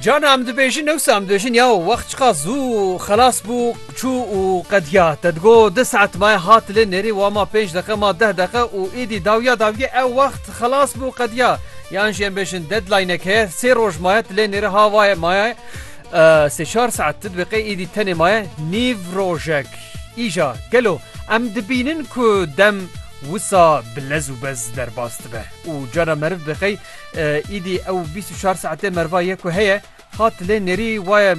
Can em dibêjin newsa em dibêjin ya wext çiqa zû xelas bû çû û qediya te digo di saet maye hat lê nêrî wa ma pênc deqe ma deh deqe û êdî dawiya dawiye ew wext xelas bû qediya yan jî em bêjin deadlinek heye sê roj maye lê nêrê ha vaye maye sê çar saet ti dibiqê êdî tenê maye nîv rojek îja gelo em dibînin ku dem wisa bi lez û bez derbas dibe û cara meriv biqey Îdî ew bîst û çar saetê merva ye ku heye hat lê nêrî waye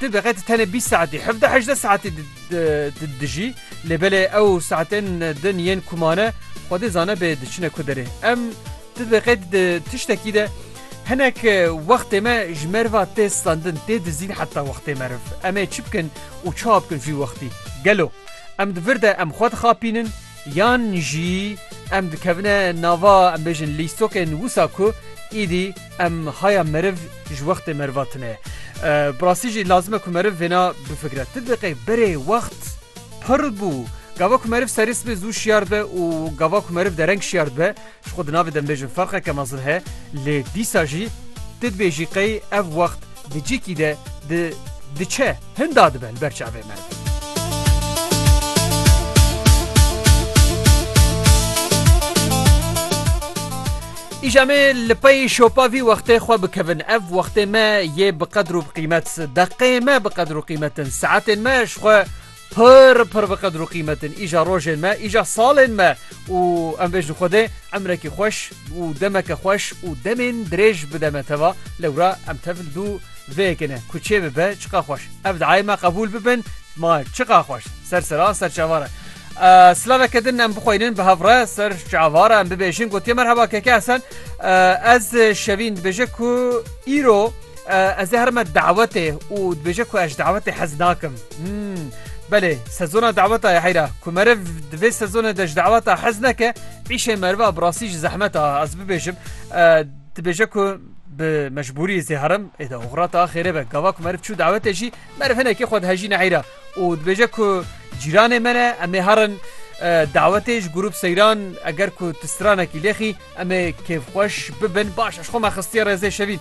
tu bi qet tenê bîst saetî hevdeh hejdeh saetî dijî lê belê ew saetên din yên ku mane xwedê zane bê diçine ku derê em tu bi qet tiştekî de hinek wextê me ji merva tê standin tê dizîn heta wextê meriv em ê çi bikin û çawa bikin vî wextî gelo em di vir de em xwe dixapînin Yan jî em dikevine nava em bêjin lîstokên wisa ku îdî em haya meriv ji wextê meriva tune. Bi rastî jî lazim e ku meriv vêna bifikre. Ti diqê berê wext pir bû. Gava ku meriv serê sibê zû şiyar dibe û gava ku meriv dereng şiyar dibe Ji xwe di navê de dibêjin ferqeke mezin heye lê dîsa jî tu dibêjî qey ev wext di cîkî de di diçe hinda dibe li ber çavê me. Îja me li pey şopa vî wextê xwe bikevin ev wextê me yê bi qedr û bi qîmet deqê me bi qedr û qîmetin saetên me ji xwe Pir pir bi qedir û qîmet in îja rojên me, îja salên me û em vêjin Xwedê emrekî xweş û demeke xweş û demên dirêj bide me teva. Lewra em tev li dû vê yekê ne ku çê bibe çiqa xweş. Ev diayê me qebûl bibin ma çiqa xweş. Ser sera ser çavare. Silaveke din em bixweynin bi hev re ser çavare em bibêjin gotiye merheba keke Hesen. Ez şevîn dibêje ku îro ez ê herime dawetê û dibêje ku ez dawetê hez nakim. Belê sezona daweta ye heyra ku meriv di vê sezonê de ji daweta hez neke îşê meriva bi rastî ji zehmet a ez bibêjim dibêje ku bi mecbûrî zê herim ê de oxrata xêrê be gava ku meriv çû dawetê jî meriv hinekê xwe dihejî neheyra û dibêje ku cîranê me ne em ê herin dawetê ji grûp seyran eger ku tu stranekî lêxî em ê kêfxweş bibin baş ez xwe me xistiye rêzê şevîn